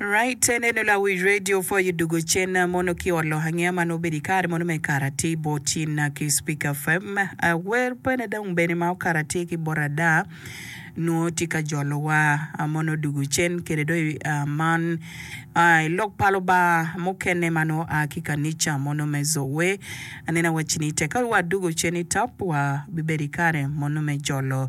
Right, en eno lawic radio for you dugo cen na mono ki ot lok angeya ma nongo obedo i kare mono me Karati Botin na ki Speaker FM. Awer pene dong bene ma okarati ki bot ada nongo tye ka jolo wa a mono dugo cen kede dong i a man a i lok pa Lubanga mukene ma nongo a ki kanica mono me Zoe. Aneno wacci ni teka wa dugo cen i top wa bibedo i kare mono me jolo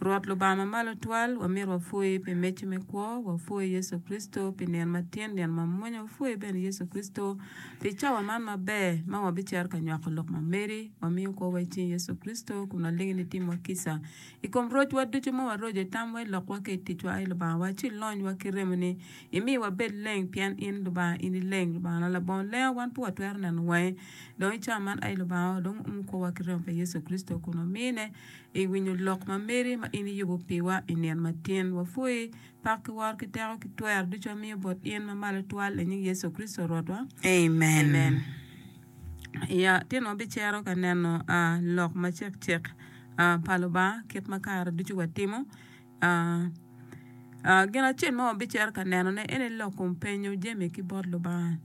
Rwot Lubanga ma malo twal, wamito wapwoyi pi mecci me kwo, wapwoyi Yecu Kricito pi nino ma tin, nino ma mwonya, wapwoyi bene Yecu Kricito pi cawa man maber ma wabicito ka nywako lok ma meri. Wamiyo kwowa i cing Yecu Kricito kun walingi ni itimwa kica. I kom rocwa ducu ma waroco i tamwa, i lokwa ki i ticwa, ai Lubanga wa, ci ilonywa ki remoni, imi wabed leng, pien in Lubanga, in ileng. Lubangana, labongo lenga, wan pe watwero neno wangi dong i cawa man, ai Lubanga wa, dong uum kwowa ki remo pa Yecu Kricito kun wamine. I winyo lok ma meri ma in iyubo piwa i nino matin, wapwoyi. Pak ki woro ki teko ki twer ducu wamiyo bot in ma malo twal i nying Yecu Kricito Rwotwa. Amen. I atino wabicero ka neno lok macekcek pa Lubanga kit ma kare ducu watimo. Gin acel ma wabicero ka nenone en aye lok kom penyo jami ki bot Lubanga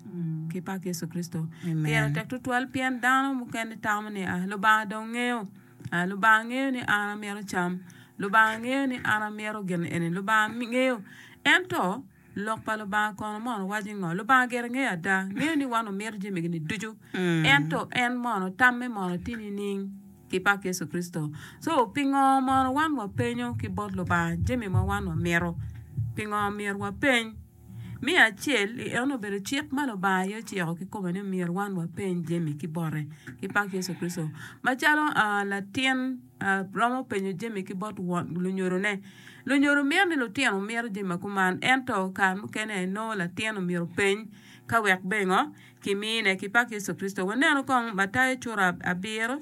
ki bot Yecu Kricito. Pire tek tutwal pien dano mukene tamo ni Lubanga dong ngeyo. Lubanga ngeyo ni an amito cam. Lubanga ngeyo ni an amito gin eni. Lubanga ngeyo. Ento Lok pa Lubanga kono mono waco ngo? Lubanga gire ngeyo ada. Ngeyo ni wan wamito jami gini ducu. Ento en mono tamme mono tye nining? Ki pak Yecu Kricito. So, pingo mono wan wapenyo ki bot Lubanga jami ma wan wamito? Pingo myero wapeny? Me acel, eno obedo cik ma Lubanga aye ociko kikome ni myero wan wapeny jami ki bote ki pak Yecu Kricito. Macalo latin romo penyo jami ki bot lunyodone, lunyodo mito ni lutino omyero jami ma kuman ento kare mukene nongo latin omyero openy ka wek bengo kimine ki pak Yecu Kricito. Wanenu kong Matayo cura abiro.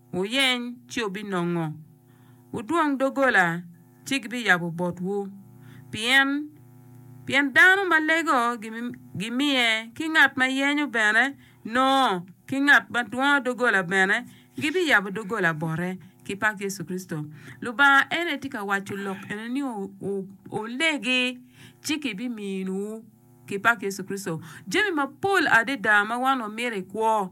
Wuyeny, ci wubinongo. Wudwong doggola, ci gibiyabo botwu. Pien, pien dano ma lego gimiye, ki ngat ma yenyo bene nongo, ki ngat ma dwongo doggola bene gibiyabo doggola bote. Ki pak Yecu Kricito! Lubanga en aye tye ka waco lok eno ni, Wu, wu, wulegi, ci kibiminiwu. ki pak Yecu Kricito, jami mapol adada ma wan wamito i kwo.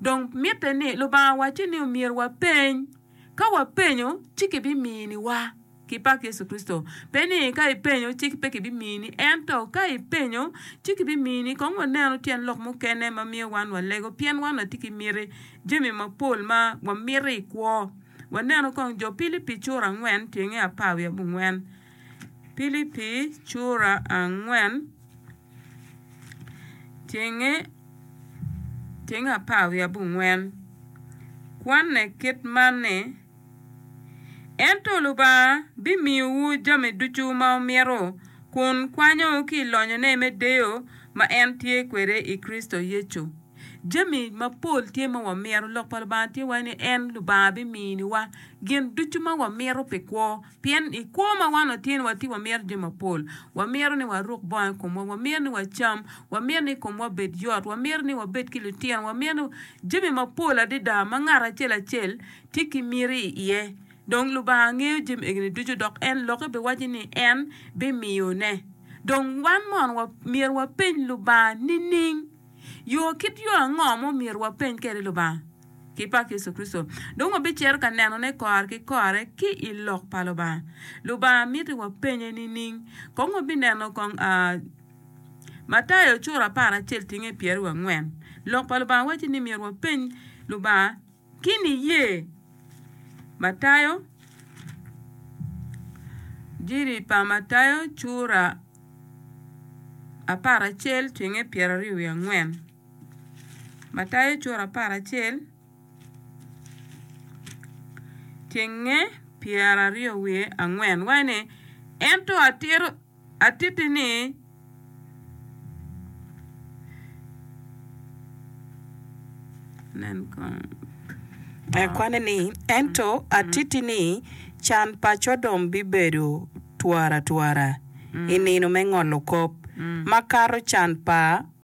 Dong mitte ni Lubanga wacce ni omyero wapeny. Ka wapenyo, ci kibiminiwa, ki pak Yecu Kricito. Pe ni ka ipenyo ci pe kibimini, ento ka ipenyo ci kibimini. Kong wanenu tyen lok mukene ma miyo wan walego pien wan watye ki miti jami mapol ma wamito i kwo. Wanenu kong jo Pilipi cura angwen tyenge apar wiye abongwen. Pilipi cura angwen cenge cenge apar wiye abongwen kwanne kit man ni, Ento Lubanga bimiyowu jami ducu ma wumito kun kwanyowu ki i lonyone me deyo ma en tye kwede i Kricito Yecu. Jami mapol tye ma wamito. Lok pa Lubanga tye waci ni en Lubanga biminiwa gin ducu ma wamito pi kwo. Pien i kwo ma wan otyen watye wamyero jo mapol, wamyero ni waruk bongo i komwa, wamyero ni wacam, wamyero ni komwa obed yot, wamyero ni wabed ki lutino, wamyero ni jami mapol adada ma ngat acel acel tye ki miti iye. Dong Lubanga ngeyo jami egini ducu dok en lokke biwacci ni en bimiyone. Dong wan mono wa, myero wapeny Lubanga nining? Yo kit yo ango ma omyero wapeny kwede Lubanga? ki pak Yecu Kricito, dong wabicito ka nenone kore ki kore ki i Lok pa Lubanga. Lubanga miti wapenye nining? Kong wabineno kong a Matayo cura apar acel tinge pyeraryo angwen. Lok pa Lubanga waco ni myero wapeny Lubanga ki niye. Matayo Injili pa Matayo cura apar acel tinge pyeraryo wiye angwen. Matayo cura apar acel cenge pyeraryo wiye angwen waco ni, Ento atitti ni, can pa Codom bibedo twaratwara i nino me ngolo kop, makato can pa.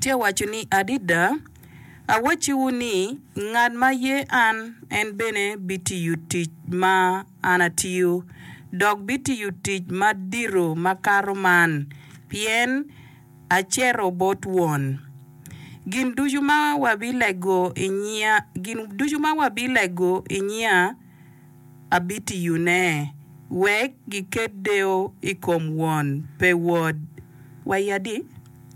Tye ka waco ni, 'Adada awacciwu ni, ngat ma ye an, en bene bitiyo tic ma an atiyo, dok bitiyo tic madito makato man, pien acito bot Won. Gin ducu ma wabilego i nyinga, abitiyone wek giket deyo i kom Won pe Wod. Wa i adi?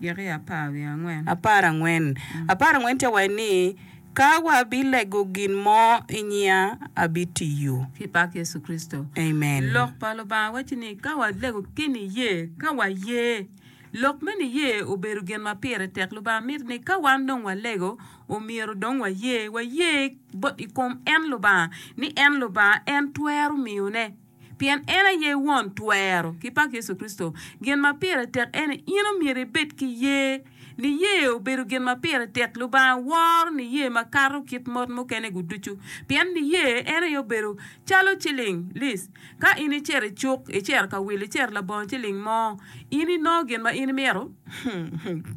Gik apar angwen. Apar angwen tye ka waci ni, Ka wabilego gin mo i nyinga, abitiyo. Pi pak Yecu Kricito. Amen. Lok pa Lubanga waci ni ka walego keni iye, ka waye. Lok me niye obedo gin ma pire tek. Lubanga mito ni ka wan dong walego, omyero dong waye, waye bot i kom en Lubanga, ni en Lubanga, en twero miyone, pien en aye Won twero. Ki pak Yecu Kricito! Gin ma pire tek ene, in omyero ibed ki ye. Niye obedo gin ma pire tek. Lubanga woro niye makato kit mot mukene-gu ducu, pien niye en aye obedo calo ciling, lis, Ka in icer i cuk, icer ka wil, icer labongo ciling mo, in inongo gin ma in imito?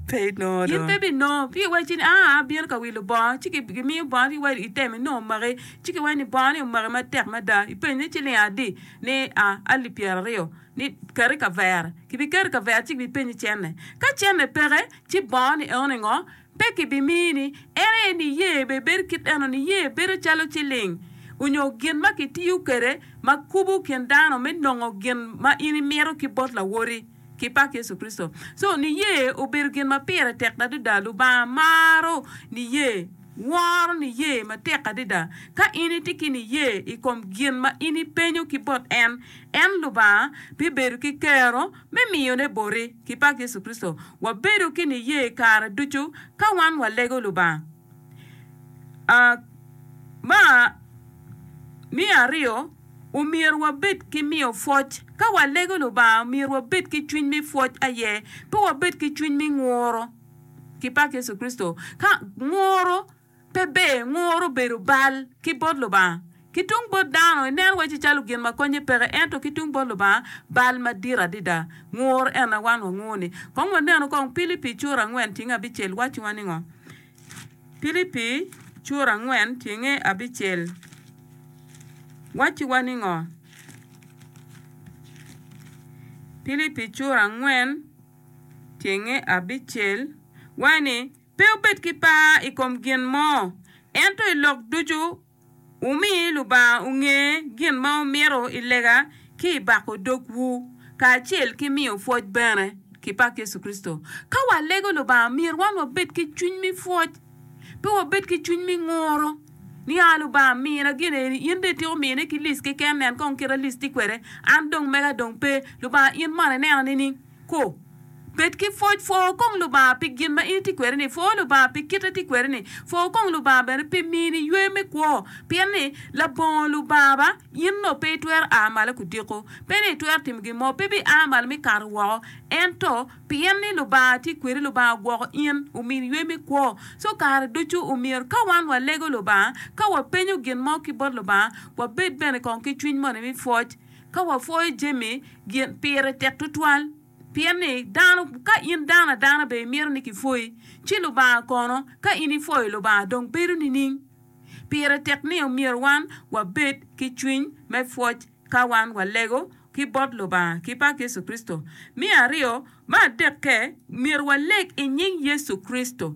Pe inongo do. In pe binongo. Pi iwaco ni, aa, abino ka wilo bongo, ci gi- gimiyo bongo, ci iwaco item inongo omaki, ci ki waco ni bongo ni omaki matek mada, ipenyo ni ciling adi? Ni, a, alip pyera aryo. Ni, keti kavere. Kibiketi kavere ci kibipenyi cenne. Ka cenne peke, ci bongo ni eno ni ngo? Pe kibimini. En aye niye bene bedo kit eno, niye bedo calo ciling, onyo gin ma kitiyo kwede ma kubo kin dano me nongo gin ma in imito ki bot Lawoti ki pak Yecu Kricito. So, niye obedo gin ma pire tek adada. Lubanga maro niye, woro niye matek adada. Ka in itye ki niye i kom gin ma in ipenyo ki bot En, en, Lubanga, bibedo ki kero Me miyone boti ki pak Yecu Kricito, wabedo ki niye kare ducu ka wan walego Lubanga. A Ma me aryo, omyero wabed ki miyo pwoc. Ka walego Lubanga, myero wabed ki cwiny me pwoc aye, pe wabed ki cwiny me nguro. Ki pak Yecu Kricito, ka nguro. Pe ber nguru bedo bal ki bot Lubanga. Ki tung bot dano, ineno wacci calo gin ma konye peke, ento ki tung bot Lubanga, bal madit adada. Ngur en aye wan wangur-ni. Kong wanenu kong Pilipi cura angwen tyeng abicel wacciwa ningo? Pilipi cura angwen tyeng abicel wacciwa ningo? Pilipi cura angwen tyeng abicel waci ni, Pe wubed ki par i kom gin mo, ento i lok ducu wumi Lubanga onge gin ma wumito i lega ki i bako dogwu, kacel ki miyo pwoc bene. Ki pak Yecu Kricito! Ka walego Lubanga, myero wan wabed ki cwiny me pwoc, pe wabed ki cwiny me nguru ni, 'A Lubanga, mina gin eni. In dong ityeko miyone ki licci keken, nen kong kit a licci kwede, an dong mega dong pe. Lubanga, in mono ineno nining? Ko. Bed ki pwoc. Pwor kong Lubanga pi gin ma in itye kwede-ni. Pwor Lubanga pi kite itye kwede-ni. Pwor kong Lubanga bene pi mini ywe me kwo. Pien ni, labongo Lubanga ba, in onongo pe itwero a malo ki odiko. Pe ni itwero timo gin mo. Pe ibiya malo me kato woko. Ento, pien ni Lubanga tye kwedi, Lubanga ogwoko in, omini ywe me kwo. So, kare ducu omyero ka wan walego Lubanga, ka wapenyo gin mo ki bot Lubanga, wabed bene kong ki cwiny moni me pwoc. Ka wapwoyo jami, gin pire tek tutwal. Pien ni, dano, ka in dano adana be imito ni kipwoyi, ci Lubanga kono, ka in ipwoyo Lubanga, dong bedo nining? Pire tek ni omyero wan wabed ki cwiny me pwoc ka wan walego ki bot Lubanga ki pak Yecu Kricito. Me aryo, me adekke, myero waleg i nying Yecu Kricito.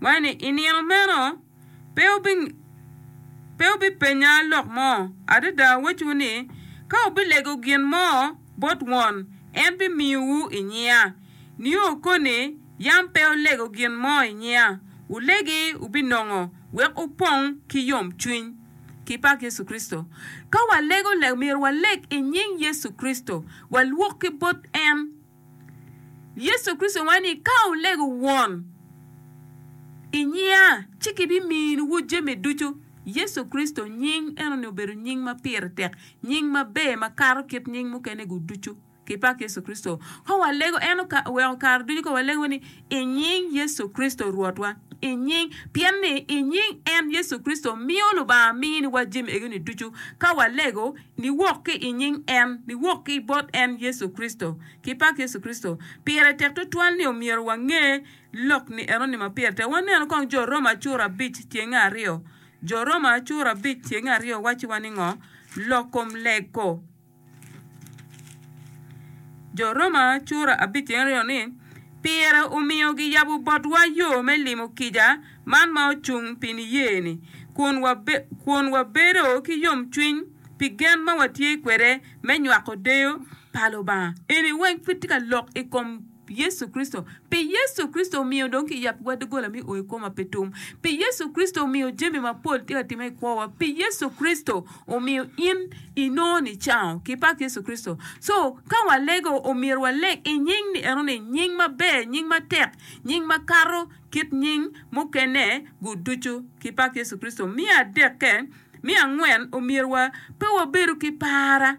Wai ni i nino meno pe wubipenya lok mo. Adada awacciwu ni, ka wubilego gin mo bot Won, en bimiyowu i nyinga. Nio koni yam pe wulego gin mo i nyinga, wulegi wubinongo, wek wupong ki yomcwiny, ki pak Yecu Kricito. Ka walego lego, myero waleg i nying Yecu Kricito, walwok ki bot en. Yecu Kricito waco ni ka wulego Won i nyinga ci kibiminuwu jami ducu. Yecu Kricito nying enoni obedo nying ma pire tek, nying maber makato kit nying mukene-gu ducu. Kipak Yecu Kricito! Ka walego en oweko kare ducu ka walego ni I nying Yecu Kricito Rwotwa, i nying. Pien ni i nying en, Yecu Kricito, miyo Lubanga mini wa jami ego-ni ducu. Ka walego, niwok ki i nying en, niwok ki bot en, Yecu Kricito. Kipak Yecu Kricito! Pire tek tutwal ni omyero wange lok ni eno ni ma pire tek. Wanenu kong jo Roma cura abic tyenge aryo. Jo Roma cura abic tyenge aryo wacci wa ni ngo? Lok kom lego. Jo Roma cura abic tyen aryo ni, Pire omiyo giyabo botwa yo me limo kica man ma ocung pi niye-ni, kun wabedo ki yomcwiny pi gen ma watye kwede me nywako deyo pa Lubanga. Yecu Kricito. Pi Yecu Kricito omiyo dong kiyab wa doggola me o i koma pi tum. Pi Yecu Kricito omiyo jami mapol tye ka timme i kwowa. Pi Yecu Kricito omiyo in inongo nicango. Kipak Yecu Kricito. So, ka walego, omyero waleg i nying ni enoni, nying maber, nying matek, nying makato kit nying mukene gu ducu. Kipak Yecu Kricito. Me adekke, me angwen, omyero wa pe wabedu ki para.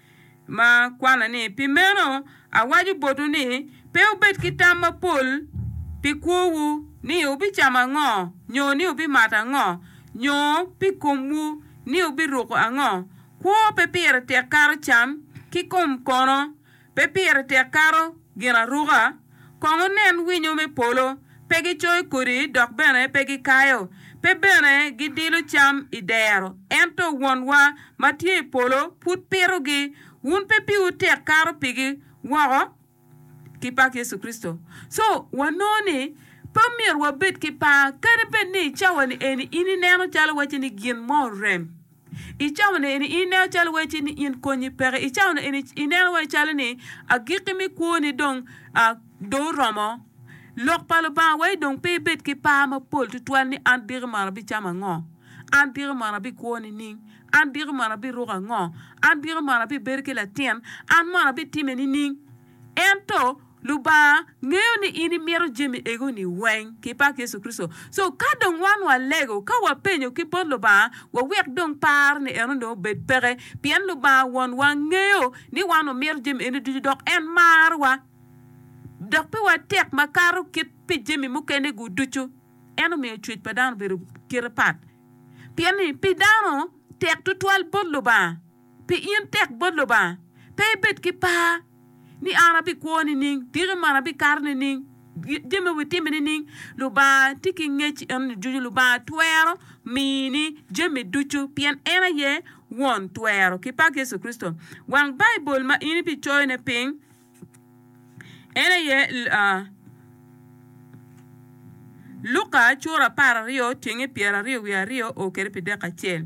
ma kwana ni, Pi meno, awaco botwu ni, pe wubed ki tam mapol pi kwowu, ni wubicamo ango, nyo ni wubimato ango, nyo pi komwu, ni wubiruko ango. Kwo pe pire tek kato cam, ki kom kono pe pire tek kato ginaruka. kong wunen winyo me polo, pe gicoyo kodi dok bene pe gikayo, pe bene gidilo cam i dero, ento Wonwa ma tye i polo pud pitogi. Wun pe piwu tek kato pigi woko ki pak Yecu Kricito. Co, wanongo ni pe omyero wabed ki par kadi bed ni i cawani eni in ineno calo wacce ni gin mo orem. I caone eni ineno calo wacci ni in konyi peke. I caone eni ineno wai calo ni agikki me kwoni dong ah, dong oromo. Lok pa Lubanga wai dong pe ibed ki par mapol tutwal ni an diki mono abicamo ango? An diki mono abikwo nining? An diki mono abiruko ango? An diki mono abibedo ki latin? An mono abitime nining? Ento. Lubanga ngeyo ni in imito jami egoni weng ki pak Yecu Kricito. So ka dong wan walego ka wapenyo ki bot Lubanga wawek dong par ni eno dong obed peke pien Lubanga won wa ngeyo ni wan wamito jami eni ducu dok en maro wa dok pi wa tek ma kato kit pi jami mukene gu ducu. En omiyo cwec pa dano obedo kite pat pien ni pi dano tek tutwal bot Lubanga. Pi in tek bot Lubanga, pe ibed ki par ni an abikwo nining, tiki man abikato nining, jami ma witime nining. Lubanga tye ki ngec eno ducu. Lubanga twero mini jami ducu pien en aye Won twero. Ki pak Yecu Kricito! Wang Baibul ma in ibicoyone piny en aye Luka apar aryo pyeraryo wiye aryo o kwede pi dek acel.